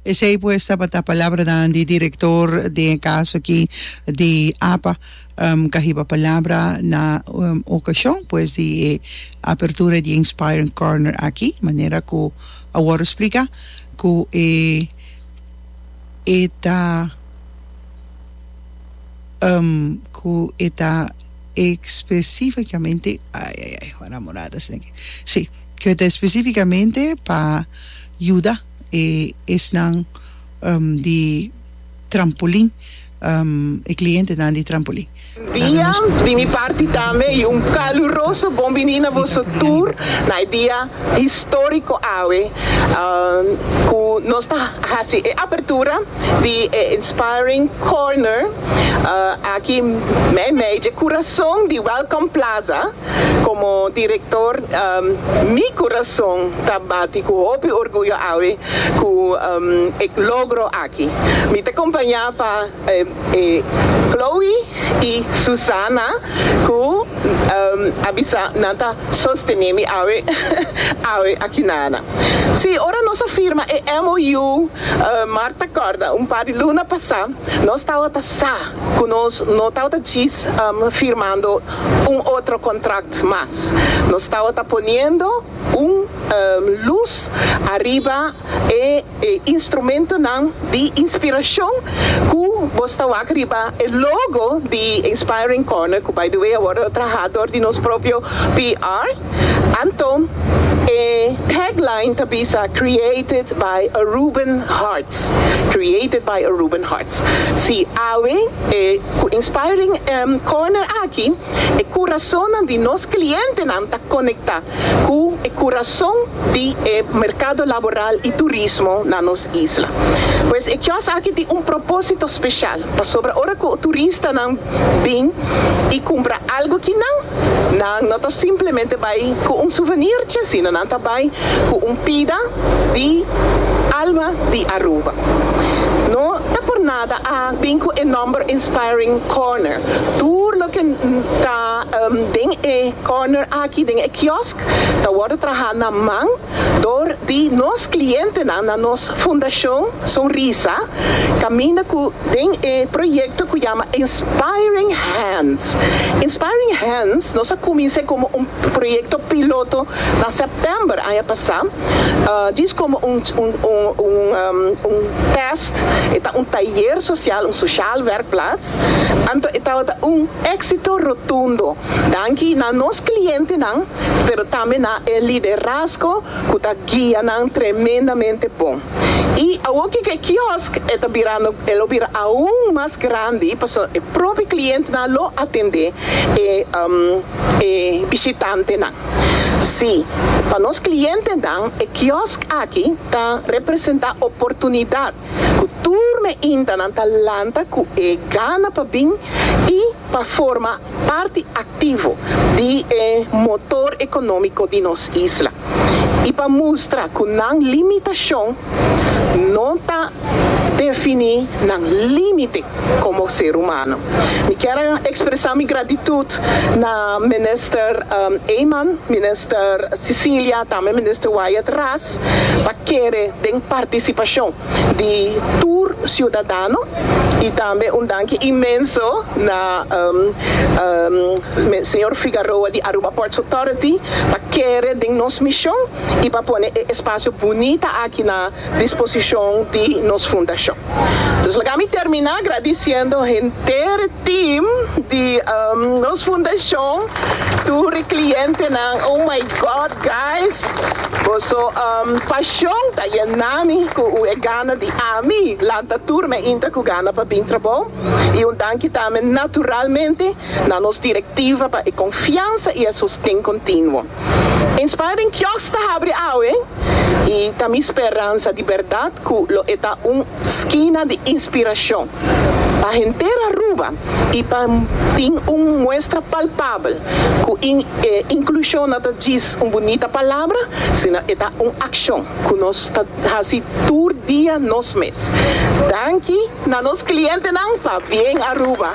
Esei pues tabata palabranan di director den e caso aki di apa ca hiba palabra na ocasion pues di e apertura di e Inspiring Corner aki manera cu a worde splica cu e e ta cu e ta especificamente ay ay ay ora a morada sta aki si. Ke ta espesífikamente pa yuda e esnan di trampolin, e klientenan di trampolin. Dia di mi parti tambe y un caluroso bon bini na boso tur na e dia histórico awe cu nos ta haci e apertura di e Inspiring Corner aki meimei dje curazon di Welcome Plaza. Komo direktor, mi kurason ta bati ku hopi orguyo awe ku e logro aki. Mi ta kompañá pa Chloe i Susana ku a bisa nan ta sostené mi awe awe akinana. Sí, ora nos a firma e MOU, Mark ta kòrda, un par di luna pasá nos tabata sa ku nos no tabata djis firmando. un otro contract mas. Nos tabata poniendo un luz ariba e instrumentonan di inspiracion cu bos ta wak riba e logo di Inspiring Corner, cu by the way awor lo traha door di nos propio PR. Anton e tagline ta bisa Created by Aruban Hearts, Created by Aruban Hearts. Si awe e cu Inspiring Corner aki, e curazonnan di nos clientenan ta conecta cu e curazon di e mercado laboral y turismo na nos isla. Pues e kiosk aki tin un proposito special. Pasobra ora ku turistanan bin i kumpra algu akinan, nan no ta simplemente bai ku un suvenirche, sino nan ta bai ku un pida di alma di Aruba. No ta por nada a bin ku e nòmber Inspiring Corner. Tur loke ta den e corner aki, den e kiosk, ta wòrdu traha na man. dor di nos klientenan na nos Fundashon Sonrisa kaminda ku den e proyekto ku yama Inspiring Hands. Inspiring Hands nos a kumins'é komo un proyekto piloto na sèptèmber aña pasá, djis komo un tèst, e ta un tayer sosial, un sosial wèrkplats, anto e tabata un éksito rotundo. Danki na nos klientenan, pero tambe na e liderazgo ku ta guia nan tremendamente bon. I awor ku e kiosk e ta birando, e lo bira aun mas grandi pasobra e propi klientenan lo atendé e bishitantenan. Sí, pa nos klientenan e kiosk aki ta representá oportunidat ku tur meintanan ta lanta ku e gana pa bin i pa forma. parti activo di e motor economico di nos isla y pa mustra cu nan limitacion no ta defini nan limite como ser humano. Mi kier a expresa mi gratitud na Minister Eman, Minister Cecilia, tambe Minister Wyatt Ras pa kere den participacion di tur siudadano y tambe un danki inmenso na Señor Figaroa di Aruba Ports Authority pa kere den nos mision y pa pone e espacio bunita aki na disposicion di nos fundacion. Dus laga mi termina agradiciendo henter team di nos fundacion, tur e clientenan, oh my God guys! Boso pashon ta yena mi ku un e gana di ami lanta tur me inta ku gana pa bin trabou, i un danki tambe naturalmente na nos direktiva pa e konfiansa i e sosten kontinuo. Inspiring Kiosk ta habri awe i ta mi speransa di bèrdat ku lo e ta un skina di inspirashon. Pa henter Aruba y pa tin un muestra palpabel cu in e inclusion no ta djis un bunita palabra, sino e ta un accion cu nos ta haci tur dia nos mes. Danki na nos clientenan pa bien Aruba.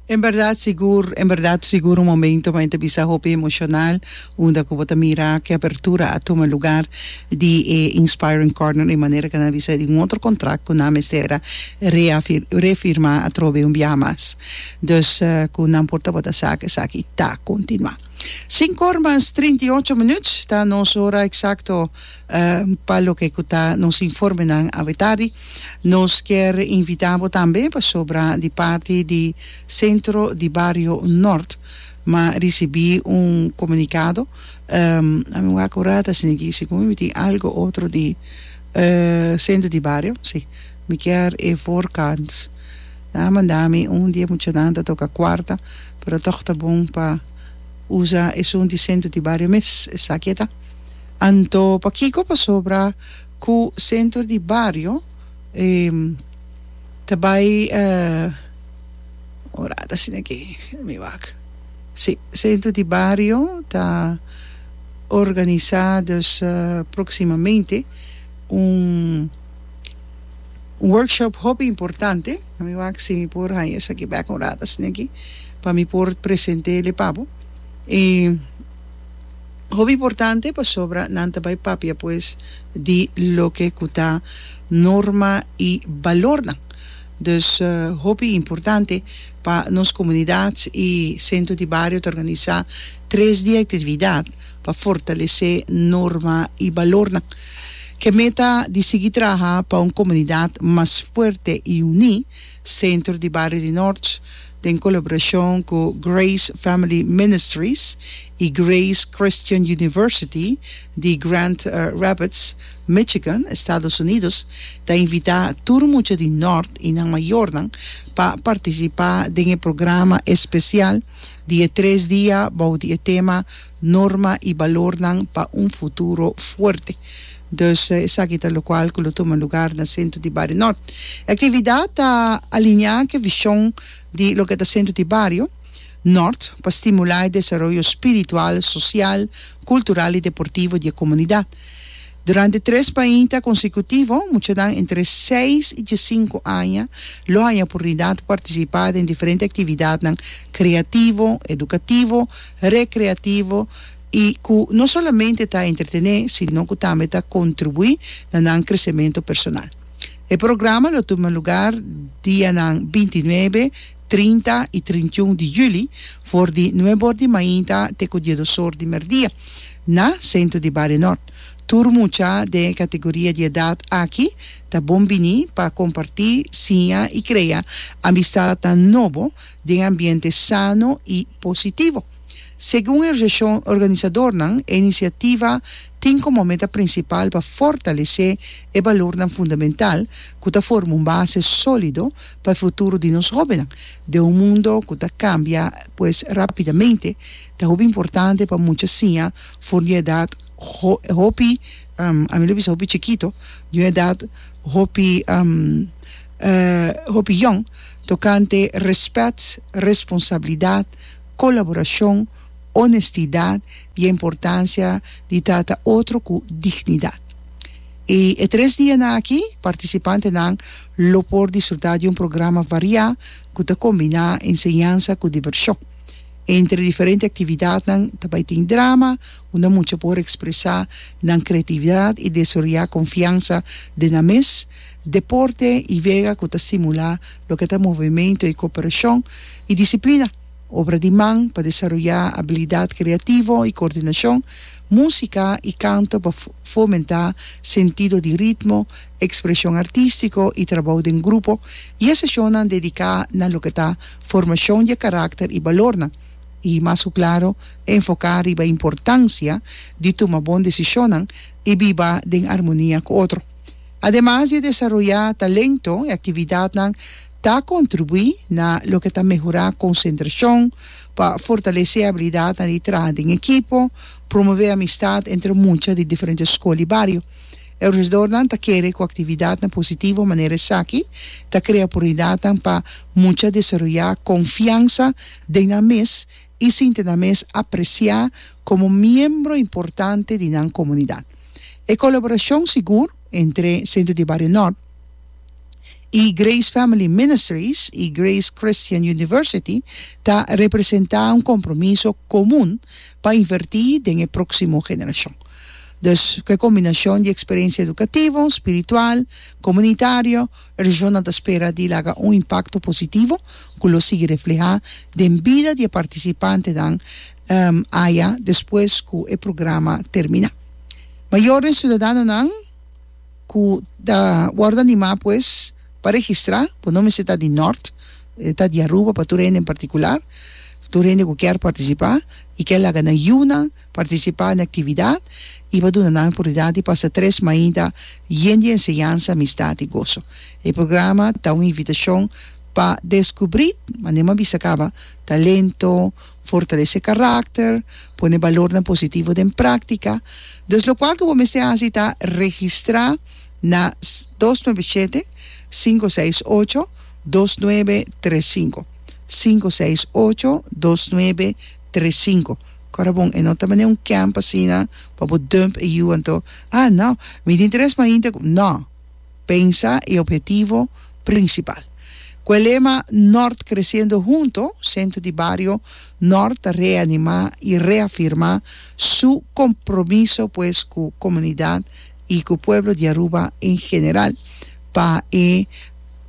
En berdad sigur, en berdad sigur un momento mei ta bisa hopi emocional unda cu bo ta mira cu e apertura a tuma lugar di e Inspiring Corner e manera cu nan a bisa di un otro contract cu nan mester a reafirma atrobe un biaha mas. Dus cu nan por tabata sa cu esaki ta continua. Sinku or mas trinta i ocho minuut ta nos hora eksakto pa loke ku ta nos informenan awetardi. Nos kier invitá bo tambe pasobra di parti di Sentro di Bario Nort m'a risibí un komunikado, a mi wak ora ta asina aki, segun mi tin algo otro di Sentro di Bario, si. Mi kier e voorkant. Nan a manda mi un di e muchanan ta toka kuarta, pero tog ta bon pa usa esun di sentro di bario mes. Esaki e ta. Anto pakiko? Pasobra ku sentro di bario ta bai orat asina ke. Mi wak. Si, sentro di bario ta organisa, dus proximamente un. Un workshop hopi importante, a mi wak si mi por haña esaki bek un rat asina aki pa mi por presente el e pa bo. E hopi importante pasobra nan ta bai papia pues di loke ku ta norma i balornan, dus hopi importante pa nos komunidat i sentro di bario ta organisá tres di aktividat, pa fortalesé norma i balornan. Ku e meta di sigui traha pa un komunidat mas fuerte i uní, Sentro di Bario di Nort, den kolaborashon ku Grace Family Ministries i Grace Christian University di Grand Rapids, Michigan, Estados Unidos, ta invitá tur mucha di Nort i nan mayornan pa partisipá den e programa espesial, di e tres dia bou di e tema Norma y balornan pa un futuro fuerte. Dus esaki ta locual cu lo tuma lugar na Centro di Bario Nort. E actividad ta alinea c'e vision di loke ta Centro di Bario Nort pa stimula e desaroyo spiritual, social, cultural y deportivo di e comunidad. Durante tres bainta konsecutivo, muchanan entre seis i diesinku aña lo haña purnidat partisipá den diferente aktividatnan kreativo, edukativo, rekreativo i ku no solamente ta entretené sino ku tambe ta kontribuí na nan kresementu personal. E programa lo tuma lugar dianan binti nuebe, trinta i trintiun di juli, for di nuebe or di mainta te ku diedos or di merdia, na sentro di Bario Nort. Tur mucha den e kategoria di edat aki ta bon bini pa kompartí, siña i krea amistadnan nobo den ambiente sano i positivo. Segun e reshon organisadornan, e inisiativa tin komo meta prinsipal pa fortalesé e balornan fundamental ku ta forma un base sólido pa e futuro di nos hóbennan. Den un mundo ku ta kambia pues rápidamente, ta hopi importante pa mucha siña for di un edat hopi, ami lo bisa hopi chikito, di un edat hopi hopi yòn, tokante rèspèt, responsabilidat, colaboracion, honestidad y e importancia di trata otro cu dignidad. Y e tres dianan aki participantenan lo por disfruta di un programa varia cu ta combina enseñansa cu diversion. Entre diferente actividadnan ta bay tin drama unda mucha por expresa nan creatividad y desaroya confiansa den nan mes. deporte i vega ku ta stimulá loke ta movemento i koperashon, i disiplina, obra di man pa desaroyá abilidat kreativo i koordinashon, músika i kanto pa fomentá sentido di ritmo, ekspreshon artístiko i trabou den grupo, i e seshonnan dediká na loke ta formashon di e karakter i balornan, i mas ku klaro enfoká riba importansia di tuma bon desishonnan i biba den armonia ku otro. Ademas di e desaroyá talento, e aktividatnan ta kontribuí na loke ta mehorá konsentrashon, pa fortalesé abilidatnan di traha den ekipo, promové amistat entre mucha di diferente skol i bario. E organisadornan ta kere ku aktividatnan positivo manera esaki ta krea oportunidatnan pa mucha desaroyá konfiansa den nan mes i sinti nan mes apresiá komo miembro importante di nan komunidat. E kolaborashon sigur entre Sentro di Bario Nòrt i Grace Family Ministries i Grace Christian University ta representá un kompromiso komun pa invertí den e próksimo generashon. Dus ku e kombinashon di eksperensia edukativo, spiritual, komunitario, Regional ta spera di laga un impakto positivo ku lo sigui reflehá den bida di e partisipantenan aya despues ku e programa terminá. Mayor den siudadanonan ku ta wòrdu animá pues pa registrá, bo no mester ta di Nòrt, ta di Aruba pa tur hende en partikular, tur hende ku kier partisipá i kier laga nan yunan. Partisipá na aktividat i pa duna nan oportunidat di pasa tres mainta yen di enseñansa, amistat i goso. E programa ta un invitashon pa deskubrí, mane'e m'a bisa kaba, talento, fortalesé karakter, pone balornan positivo den práktika. Dus lokual ku bo mester hasi ta registrá na dos nuebe shete, sinku seis ocho, dos nuebe tres sinku, sinku seis ocho, dos nuebe Tres sinku. Kora bon, e no ta manera un camp asina pa bo dump e yu anto, ah no, mi tin tres mahinte ku, no, pensa e ophetivo prinsipal. Ku e lema Nort Creciendo Hunto, Sentro di Bario Nort ta reanimá i reafirmá su kompromiso pues ku komunidat i ku pueblo di Aruba en general pa e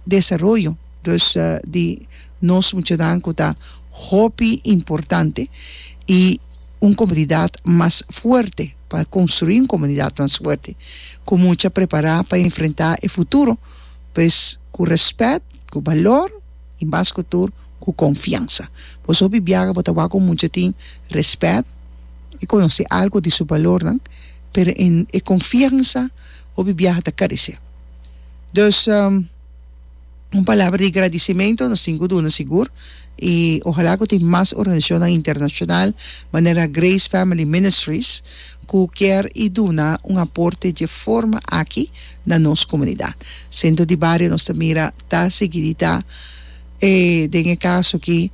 desaroyo, dus di. Nos muchanan cu ta hopi importante y un comunidad mas fuerte, pa construi un comunidad mas fuerte, cu mucha prepara pa enfrenta e futuro, pues cu respet, cu balor y mas cu tur cu confiansa. Boso hopi biaha bo ta wak un mucha tin respet y conoce algo di su balornan, pero en e confiansa hopi biaha ta carece. Dus. Un palabra di gradicimento nos tin cu duna sigur y ojalá cu tin mas organizacionnan internacional manera Grace Family Ministries cu kier y duna un aporte dje forma aki na nos comunidad. Centro di Bario nos ta mira ta sigui di ta e den e caso aki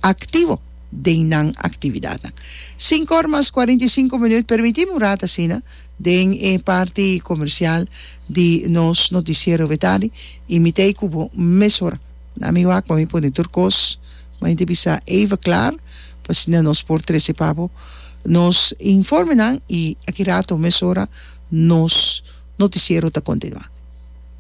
activo den nan actividadnan. Sinku or mas cuarenta y sinku minuut, permiti'me un rato asina. Den e parti comercial di nos noticiero Betani y mi t'ey cu bo mesora. Na mi wak pa mi pone tur cos mei te bisa even clar pa asina nos por trece pa bo nos informenan y aki rato mesora nos noticiero ta continua.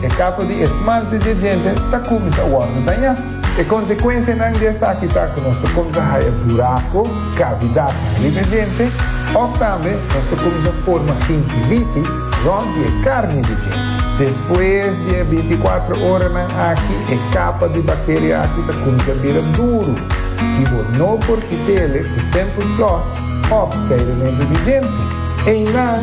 E kapo di e smalte di e djente ta kuminsá wòrdu dañá. E konsekuensianan di esaki ta ku nos ta kuminsá haya burako, kavidatnan, riba e djente, òf tambe nos ta kuminsá forma kinkiliti rònt di e karni di djente. Despues di e bintiakuatro oranan aki e kapa di bakteria aki ta kuminsá bira duru i bo no por kit'e le ku semper floss òf skairementu di djente. Einan.